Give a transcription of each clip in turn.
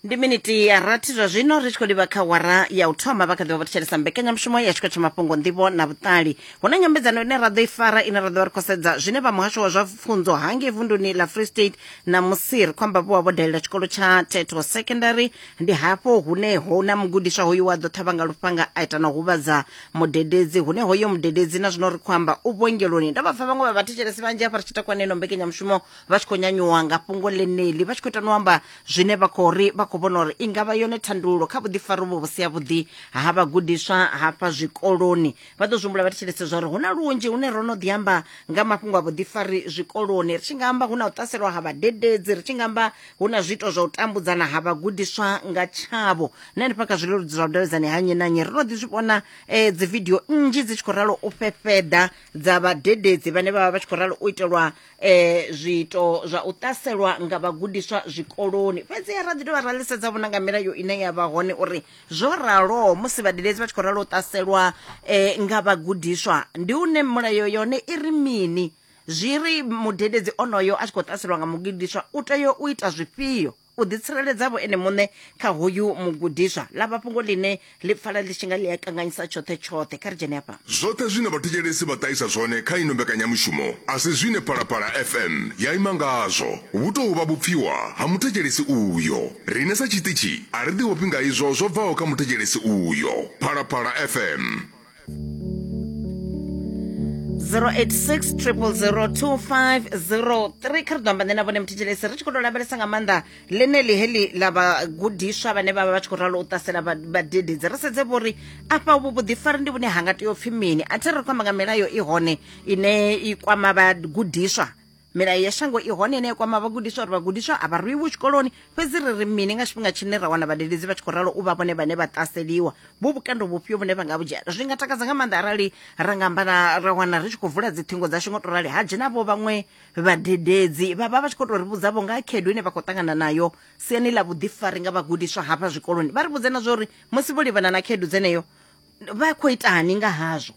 ndi miniti ya rathi zwa zwino ri tshi khou livha kha wara ya u thoma vha kha ḓivha vha thetshelesa mbekanyamushumo ya tshiko tsha mafhungo nḓivho na vhuṱali hu na nyambedzano ine ra ḓo i fara ine ra ḓo vha ri khou sedza zwine vha muhasho wa zwa pfunzo hange vunduni la free state na musi ri khou amba vho wa vho dalela tshikolo tsha teto secondary ndi hafho hune ho na mugudiswa hoyu wa ḓo ṱhavha nga lufhanga a ita na u huvhadza mudededzi hune hoyo mudededzi na zwino ri khou amba u vhuongeloni ndo vha pfa vhaṅwe vha vhathetshelesi vhanzhi afha ri tshi takwaneno mbekanyamushumo vha tshi khou nyanyuwa nga fhungo ḽeneḽi vha tshi khou ita no amba zwine vha khou ri vha khou vhona uri i nga vha yone thandululo kha vhuḓifari vho vhusi havhuḓi ha vhagudiswa hafha zwikoloni vha ḓo zwihumbula vha thetshelese zwa uri hu na lunzhi hune ro no ḓi amba nga mafhungo a vhuḓifari zwikoloni ri tshi nga amba hu na u ṱaselwa ha vhadededzi ri tshi nga amba hu na zwiito zwa u tambudzana ha vhagudiswa nga tshavho na henefha kha zwileludzi zwa vhudavhidzani ha nnyi na nnyi ri no ḓi zwi vhona um eh, dzividio nnzhi dzi tshi khou ralo u fhefheḓa dza vhadededzi vhane vha vha vha tshi khou ralo u itelwa um zwiito zwa u ṱaselwa nga vhagudiswa zwikoloni fhedzi ra ḓi dovha ra ḽisedza vhona nga milayo ine ya vha hone uri zwo raloho musi vhadededzi vha tshi khou ralo u ṱaselwa um nga vhagudiswa ndi une mulayo yone i ri mini zwi ri mudededzi onoyo a tshi khou ṱaselwa nga mugudiswa u tea u ita zwifhio u ḓitsireledza vho ene muṋe kha hoyu mugudiswa ḽa vha fhungo ḽine ḽi pfala ḽi tshi nga ḽi a kanganyisa tshoṱhe tshoṱhe kha ri dzhene afha Zwoṱhe zwine vhathetshelesi vha ṱahisa zwone kha ino mbekanyamushumo a si zwine Phalaphala FM ya ima ngazwo. Vhu tou vha vhupfiwa ha muthetshelesi uyo. Riṋe sa tshiṱitshi a ri ḓivhofhi nga izwo zwo bvaho kha muthetshelesi uyo. Phalaphala FM. 086 002503 kha ri ḓo amba nṋe na vhone muthetshelesi ri tshi khou tou lavhelesa nga maanḓa ḽeneḽi heḽi ḽa vhagudiswa vhane vha vha vha tshi khou ralo u ṱasela vhadededzi ri sedze vho uri afha vhu vhuḓifari ndi vhune ha nga tea u pfhi mini a thi ri khou amba nga milayo i hone ine i kwama vhagudiswa milayo ya shango i hone ine ya kwama vhagudiswa uri vhagudiswa a vha rwiwi tshikoloni fhedzi ri ri mini nga tshifhinga tshine ra wana vhadededzi vha tshi khou ralo u vha vhone vhane vha ṱaseliwa vhu vhukando vhufhio vhune vha nga vhu dzhia zwi nga takadza nga maanḓa arali ra nga amba na ra wana ri tshi khou vula dziṱhingo dzashu ngo to rali ha dzhenavho vhaṅwe vhadededzi vha vha vha tshi khou tou ri vhudzavho nga ha khaedu ine vha khou ṱangana nayo siani ḽa vhuḓifari nga vhagudiswa hafha zwikoloni vha ri vhudze na zwa uri musi vho livhana na khaedu dzeneyo vha khou itani nga hazwo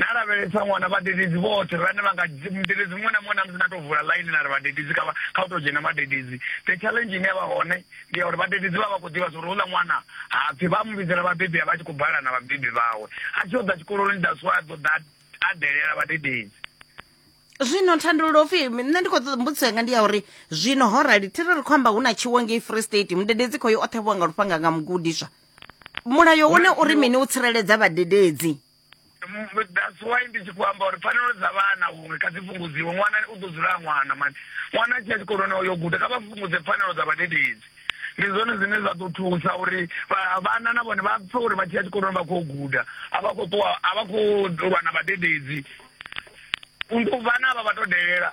na lavhelesa ṅwana vhadededzi vhoṱhe vhane vha nga mudededzi muṅwe na muṅwe na musi na to vula ḽaini na ri vhadededzi kha kha u to dzhena vhadededzi the challenge ine ya vha hone ndi ya uri vhadededzi vha vha khou ḓivha zwauri uḽa ṅwana hapfi vha mu vhidzela vhabebi a vha tshi khou bala na vhabebi vhawe a tshi yo ḓa tshikoloni nda swa a ḓo ḓa a delela vhadededzi zwino thandululo pfi nṋe ndi khou ṱoḓa mbudziso yanga ndi ya uri zwino ho rali thiri ri khou amba hu na tshiwo ngei free state mudededzi khoyo o ṱhavhiwa nga lufhanga nga mugudiswa mulayo une uri mini u tsireledza vhadededzi that's why ndi tshi khou amba uri pfanelo dza vhana huṅwe kha dzi fhungudziwe ṅwana u ḓo dzula ṅwana mani ṅwana a tshi ya tshikoloni o yo guda kha vha fhungudze pfanelo dza vhadededzi ndi zwone zwine zwa ḓo thusa uri vhana na vhone vha pfe uri vha tshi ya tshikoloni vha khou guda a vha khou ṱuwa a vha khou lwa na vhadededzi vhana vha vha to delela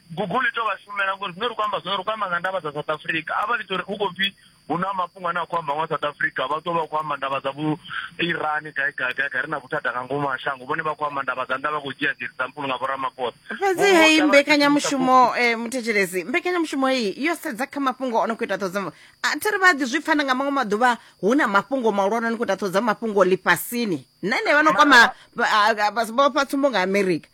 google i tou vha shumela ngori zwine ri khou amba zwone ri khou amba nga ndavha dza south africa a vha ḽi tori hu khou pfi hu na mafhungo ane a khou amba nga south africa vha ṱuwa vha khou amba ndavha dza vho iran gai gai gai gai ri na vhuthada nga ngomu ha shango vhone vha khou amba ndavha dza nnḓa vha khou dzhia dzi example nga vhoramaphosa fhedzi heyi mbekanyamushumo um muthetshelesi mbekanyamushumo heyi yo sedza kha mafhungo o no khou ita ṱhodzo a thi ri vha ḓi zwi pfana nga maṅwe maḓuvha hu na mafhungo mahulwane o no khou ita ṱhodzo mafhungo ḽifhasini na ine vha no kwama vhofha tsumbo nga amerika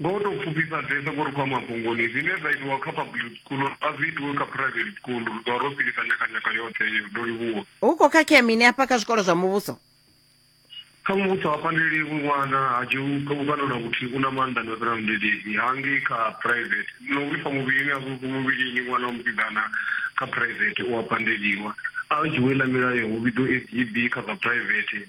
Nga u tou pfufhifhadzesa, vho ri khou ya mabungoni. Zwine zwa itiwa kha public school a zwi itiwe kha private school. Ri ḓo vha ro silisa nyakanyaka yoṱhe iyo. Ndo livhuwa. Hu khou khakhea mini hafha kha zwikolo zwa muvhuso? Kha muvhuso ha pandelelwi ṅwana, ha dzhiwi vhukando na vhuthihi, u na maanḓa no fhira mudededzi. Ha ngei kha private, na u vhifha muvhilini a zwi vhifhi muvhilini ṅwana wa musidzana kha private u a pandeliwa. A dzhiwe ḽa milayo hu vhidzwe SGB kha zwa private.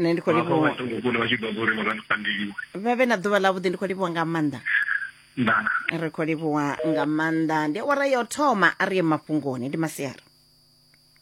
nṋe ndi khou vhafha livhuwa vhaṱuku kule vha tshi ḓo uri vha vha sipandeliwe vha vhe na ḓuvha ḽavhuḓi ndi khou livhuwa nga maanḓa ndaa ri khou livhuwa nga maanḓa ndi awara ya u thoma a ri ye mafhungoni ndi masiari